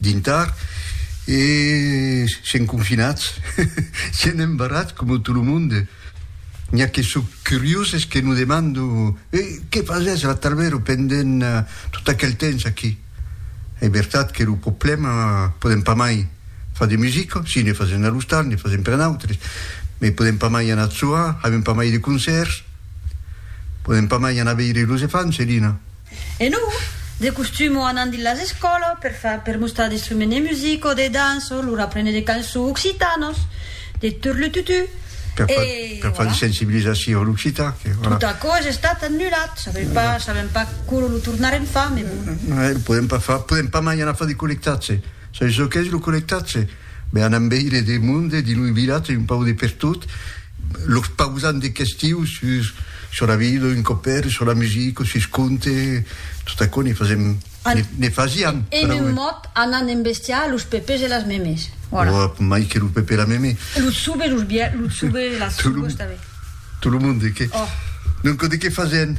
Dintar, e sèm confinats, sèm embarrats coma tot lo monde. N'i a que son curioses que nos demandan, E qué fasètz la Tarbèro pendent tot aquel temps aquí? Es vertat que lo problèma, podèm pas mai far de musica, si ne fasèm a l'ostal, ne fasèm per nautres, mai podèm pas mai anar soar, avèm pas mai de concèrts, podèm pas mai anar veire los efants, Elina. E non, de costum o anant dins las escòlas per far per mostrar d'instrument de musica o de dança o lor aprene de cançons occitanas, de turlututu, e per far de sensibilizacion a l'occitan que voilà. Tot aquò es estat annulat, sabem pas, sabem pas quora lo tornarem far, mai bon. Lo podem pas far, podem pas mai anar far de collectatge, sabi çò qu'es lo collectatge? Me anam veire de monde dins un vilatge un pauc de pertot, los pausant de questiu sus sus la vida d'un copèr, sus la musica, sus conte, tot aquò ne fasèm, ne fasiam. En un mot, anant embestiar los pepes e las memes. Voilà. Ò, mai que lo pepe e la meme. Lo tsoube, los biais, lo tsoube, las tsoubes tanben. Tot lo monde, que. Ò. Donc, de qué fasèm?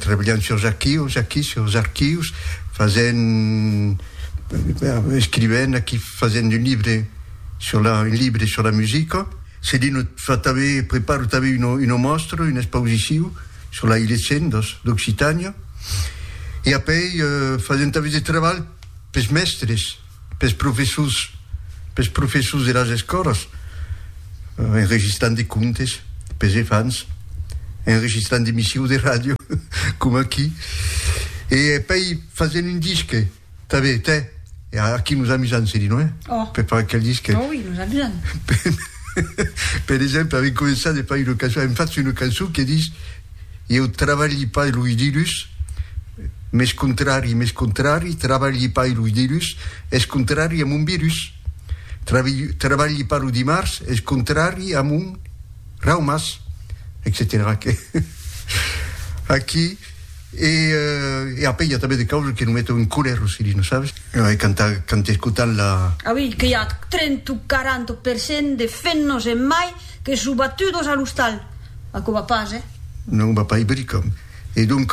Trabalhant surs archius, aquí surs archius, fasent, escrivent aquí, fasent un libre sur la, un libre sur la musica. Cedino fa tanben, prepara tanben una, una mòstra, una expausiciu sur la Ilecen dos, d'Occitània. E apèi fasent tanben de trabalh pes mèstres. pes professors, pes professors de las escòlas, enregistrant de contes pes efants, enregistrant d'emissions de ràdio, coma aquí, e pei fasent un disque tanben, tè, e aquí nos amusam, se di, non è? Oh! Per far aquel disque. Oh oui, nos amusam. Per exemple, avem començat de far una cançon, avem fach una cançon que dis, Ieu travalhi pas los dilhus, mes contrari, mes contrari, travalhi pas los dilhus, es contrari a mon virus. Travalhi pas lo dimars, es contrari a mon raumas, etcetèra. Aquí, e après i a tanben de causas que non meton en colèr lo Cirino, sabes? Ai cantat quand escotant la. Ah oui, que i a trenta o quaranta per cent de femnos en mai que son batudos a l'ostal. Aquò va pas, eh? Non, va pas, Ibericòm. E donc,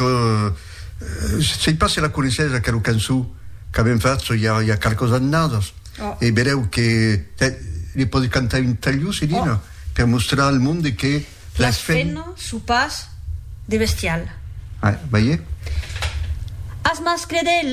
sei pas se la coneissètz, aquela cançó qu'avèm fach i a qualques annadas. E vedèu que ne pòdi cantar un talhós, Elena, per mostrar al monde que las femnas son pas de bestial. Veié? As mascles de.